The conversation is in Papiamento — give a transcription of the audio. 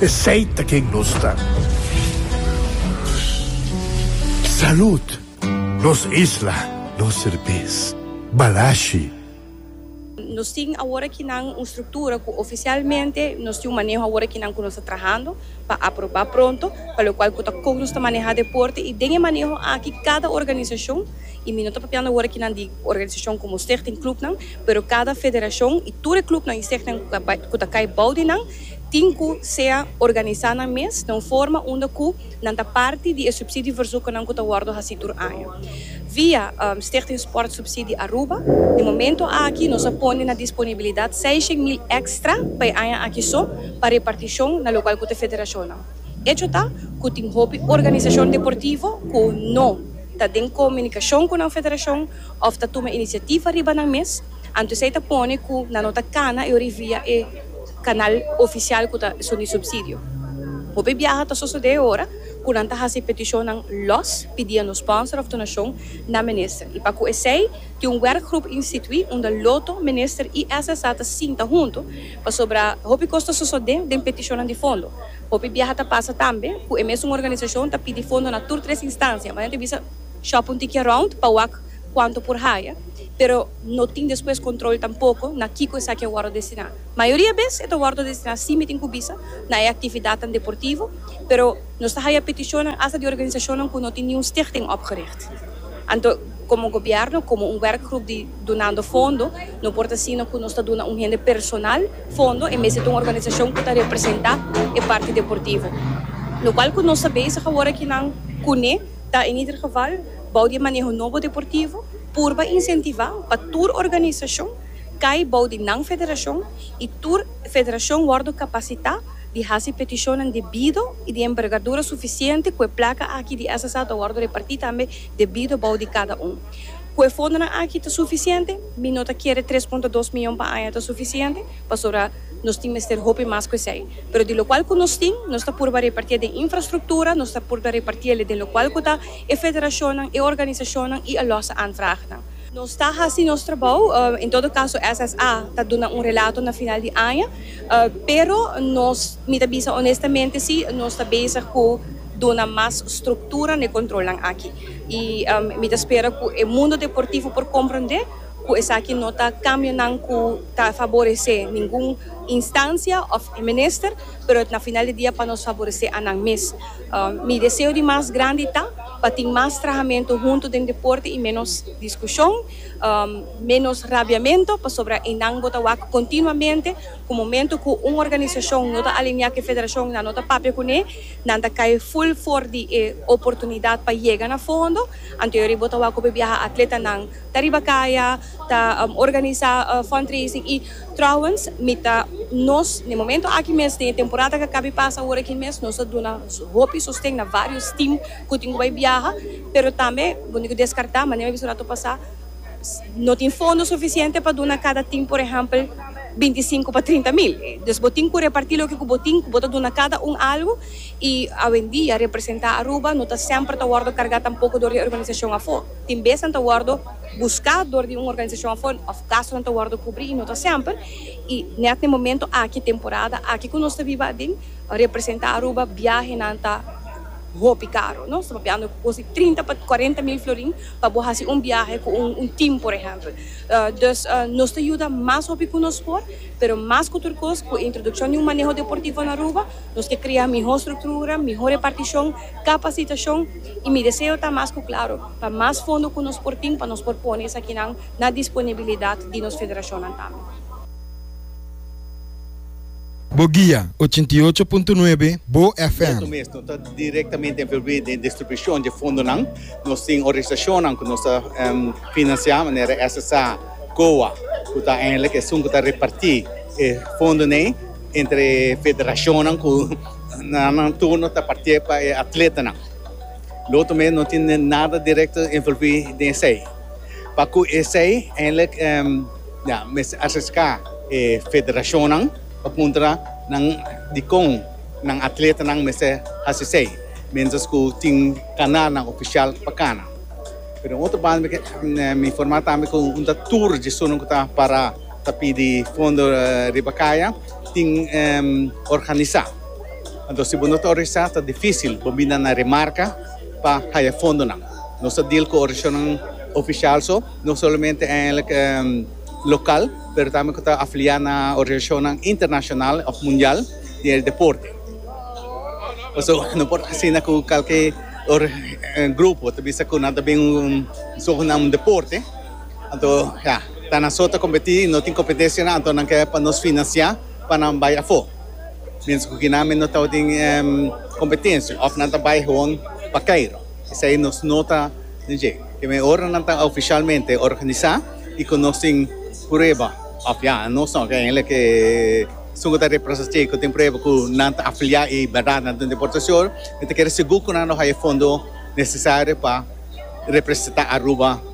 Esey ta ken nos ta. Salud! Nos isla, nos serbes. Balashi. Nos tin awor aki nan un structura cu oficialmente nos tin un maneho awor aki nan cu nos ta trahando pa aproba pronto pa lo cual cu ta con nos ta maneha deporte y den e maneho aki cada organisacion y mi no ta papiando awor aki nan di organisacion como stichting clubnan pero cada federacion y tur e clubnan y stichting cu ta cay bao di nan Tin cu sea organisa nan mes na un forma unda cu nan ta parti di e subsidieverzoeknan cu ta wordo haci tur aña. Via Stichting Sportsubsidie Aruba, di momento aki nos a pone na disponibilidad seishen mil extra pa e aña aki so pa reparticion na locual cu ta federacionnan. Echo ta cu tin hopi organisacion deportivo cu no ta den comunicacion cu nan federacion of ta tuma iniciativa riba nan mes, anto esey ta pone cu nan no ta cana e ori via e. Canal oficial cu ta suni subsidio. Hopi biaha ta sosode ora cu nan ta haci peticionnan los pidiendo sponsor of donacion na minister. Y pa cu esey tin un werkgroep institui unda Lotto, minister y SSA ta sinta hunto pasobra hopi cos ta sosode den peticionnan di fondo. Hopi biaha ta pasa tambe cu e mesun organisacion ta pidi fondo na tur tres instancia ma nan ta bisa shop un tiki around pa wak cuanto por haya pero no tin despues control tampoco na kico esaki a wordo destina. Mayoria bes e ta wòrdu destiná sin mitin ku bisa na e aktividatnan deportivo, pero nos ta haya petishonnan asta di organisashonnan ku no tin niun stichting opgericht. Anto komo gobièrnu, komo un wèrkgrup di Dunando Fondo, no por ta siña ku nos ta duna un hende personal fondo en bes di ta un organisashon ku ta representá e parti deportivo. Lo kual ku nos ta bezig awor aki nan kuné ta en ieder geval bou di e maneho nobo deportivo purba insentivá pa tur organisashon kai bou di nan federashon i tur federashon wòrdu kapasitá di hasi petishonnan debido i di enbergadura sufisiente ku e plaka aki di SSA ta wòrdu repartí tambe debido bou di kada un. Ku e fondonan aki ta sufisiente? Mi no ta kere tres punto dos mion pa aña ta sufisiente, pasobra nos tin mester hopi mas ku esei. Pero di lokual ku nos tin, nos ta purba repartié den infrastruktura, nos ta purba repartié den lokual ku ta e federashonnan, e organisashonnan i a lòs aanvraagnan. Nos ta hasi nos trabou, en todo caso SSA ta duna un relato na final di aña, pero nos, mi ta bisa honestamente si, nos ta bezig cu duna mas structura n'e controlnan aki. Y mi ta spera cu e mundo deportivo por comprende cu esaki no ta cambionan cu ta faborece ningun instancia of minister, pero na final di dia pa nos faborece anan mes. Mi deseo di mas grandi ta. Pa tin mas trahamentu huntu den deporte y menos discusion, menos rabiamento, pasobra eynan bo ta wak continuamente cu momento cu un organisacion no ta alinea cu e federacion eynan no ta papia cune, nan ta cay full for di e oportunidad pa yega na fondo, anto yori bo ta wak hopi biaha atletanan ta riba caya ta organiza fundraising y. Trouwens, mi ta, nos na e momento aki mes, den e temporada ku a kaba di pasa awor aki mes, nos a duna hopi sosten na varios team ku tin ku bai biaha, pero tambe bo tin ku deskartá, manera mi a bisa un ratu pasá, no tin fondo sufisiente pa duna kada team, por ehèmpel, binti sinku pa trinta mil. Dus bo tin ku repartí loke ku bo tin, ku bo ta duna kada un algu, i awendia representá Aruba no ta semper ta wòrdu kargá tampoko dor di e organisashon afó. Tin besnan ta wòrdu. buscá dor di un organisashon afó òf gastonan ta wòrdu kubrí i no ta semper, i nèt na e momentu aki, temporada aki ku nos ta biba aden, representá Aruba biahenan ta hopi karu. Nos ta papiando ku kos di trinta pa kuarenta mil florin pa bo hasi un biahe ku un tim por ehèmpel. Dus nos ta yuda mas hopi ku nos por, pero mas ku tur kos ku e introdukshon di un maneho deportivo na Aruba nos ke krea mihó struktura, mihó repartishon, Capacitacion y mi deseo ta mas cu claro pa mas fondo cu nos por tin pa nos por pone esakinan na disponibilidad di nos federacionnan tambe. Bo guia, ochenta i ocho punto nuebe, Bo FM. Nos mes no ta directamente envolvi den distribucion dje fondonan. Nos tin organisacionnan cu nos ta financia manera SSA, COA, cu ta eindelijk esun cu ta reparti e fondon'ey entre federacionnan cu. Na nan turno ta partié pa e atletanan. Lotu mes no tin nada direkto envolví den esei. Pa ku esei eindelijk ya mester ariská e federashonnan pa puntra nan dikon nan atletanan mester hasi esei, miéntras ku tin kanalnan ofisial pa kana. Pero den otro banda mi informá tambe ku un ta tur dje esunnan ku ta pará. Ta pidi fondo riba kaya tin organisá. Anto si bo no ta organisá ta difísil bo binda na Remarka pa haya fondonan. Nos ta deal ku organisacionnan ofisial so, no solamente eigenlijk lokal pero tambe ku ta afiliá na organisacionnan internacional òf mundial di e deporte. Pasobra bo no por asina ku kalke grupo ta bisa ku nan ta bin un sogenaamd deporte. Anto ya, ta nan so ta kompetí i no tin kompetesianan anto nan ke pa nos finansiá pa nan bai afó. Miéntras ku kinan mi no tabata den kompetensia òf nan ta bai gewoon pa Kairo. Esei nos no ta den dje. Ke men ora nan ta ofishalmente organisá i ku nos tin prueba òf ya nos no ke hende ke esun ku ta represa dje ku tin prueba ku nan ta afiliá i bèrdat nan ta un deportashon, mi ta kere sigur ku nan lo haña fondo nesesario pa representá Aruba.